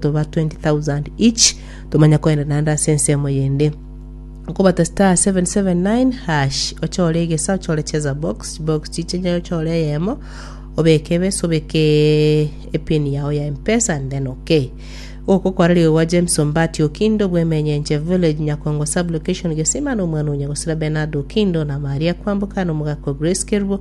toba 20,000 each tomanya koenda naende ase ensemo yende okobata star 779 hash ochore egesa ochore cheza box box chiche ochore eyemo obeke ebesa obeke epin yao ya mpesa and then okay gokokora rigo gwa james ombati okindo bwemenyenche village nyakongo sublocation gesima na omwana onya gosira benard okindo na maria kwamboka na omogaka grace kerubo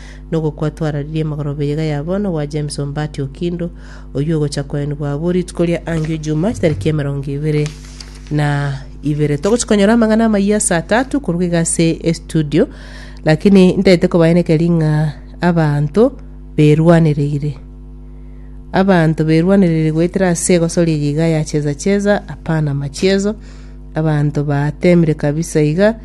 nogokwa twararirie amagoroba iga ya bono gwa James Ombati Okindo, oyio ogocha koenigwa abwo rituko ria angio Ijumaa chitariki emerongo ibere na ibere. Togochi konyora amang'ana amayia saa tatu koruga iga ase estudio, lakini ntaete kobaenekeria ng'a abanto berwanereire. Abanto berwanereire goetera ase egosoria eye iga ya cheza cheza, hapana machiezo, abanto batemire kabisa iga,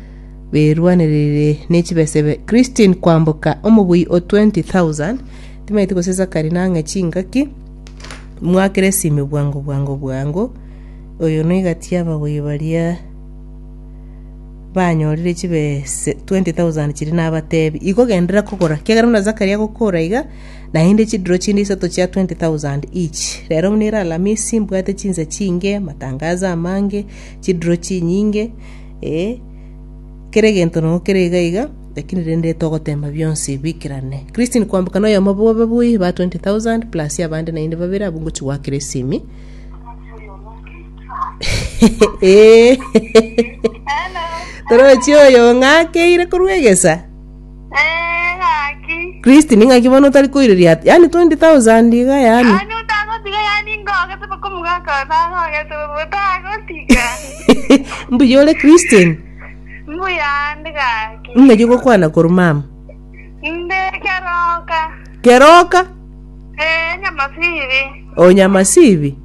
berwanereire ne chibesebe. Christine kwamboka omobui o 20,000 timaeti gose Zachary nang'e chingaki mwakere esime bwango bwango bwango oyo noiga tia ababui baria banyorire chibese 20,000 chiri nabatebi igo genderera kogora kiagera buna Zachary agokora iga naende chidiro chinde isato chia 20,000 each rero buna ere alamisi mbwate chinsa chinge matangazo amange chidiro chinyinge Ee, kera egento nogo kere iga iga, lakini rende togoteema bionsi biikerane. Christine koambeka noyomo bwo ababui ba 20,000 plus abande naende babere abwo ngochi goakera esimi. Ee. Torochi oyo ong'akeire korwa egesa. Eh, ng'aki. Kristi ning'aki bono otari koireria ati yaani 20,000 iga yaani Yaani otagotiga yaani ngogete paka omogaka one nangogete bobe otagotiga. mbuya ore Christian Mbuyande gaki. ng'aki gokwana koru mama Nde keroka. keroka Eh, nyamasiri. onyamasibi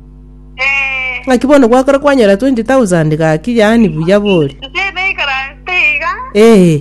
Eh. ng'aki bono gwakora kwanyora 20,000 gaki yaani buya bori Nse ebe ikaranste iga. ee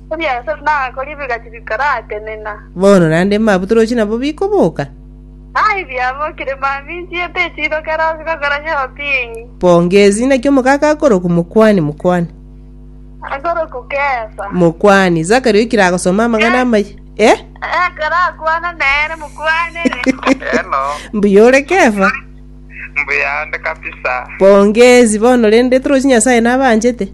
Ebiasae biria nakoria bigacha bikaratenena. Bono naende mabwo toroche nabo bikoboka. Ai biabokire maminchi ete chirokera ase gokora chobinyi. Pongezi, naki omogaka akorokwa Mokwani, Mokwani. Akorokwa Kefa. Mokwani. Zakaria oikire agosoma amang'ana Eh. amaya. Eh? Ekero akwana nere mokwanere. Hello. Mbuya ore Kefa. Mbuya ande kabisa. Pongezi, bono rende toroche Nyasae nabanchete.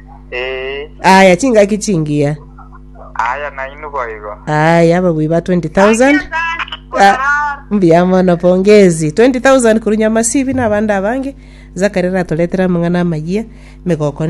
Ee, aya chingaki chingiya aya nainwe boigo. aya ababui ba 20000 Ah, mbuya mono pongezi 20000 koru nyamasibi na abande abange zakari ratoretera amang'ana amayia migoko ne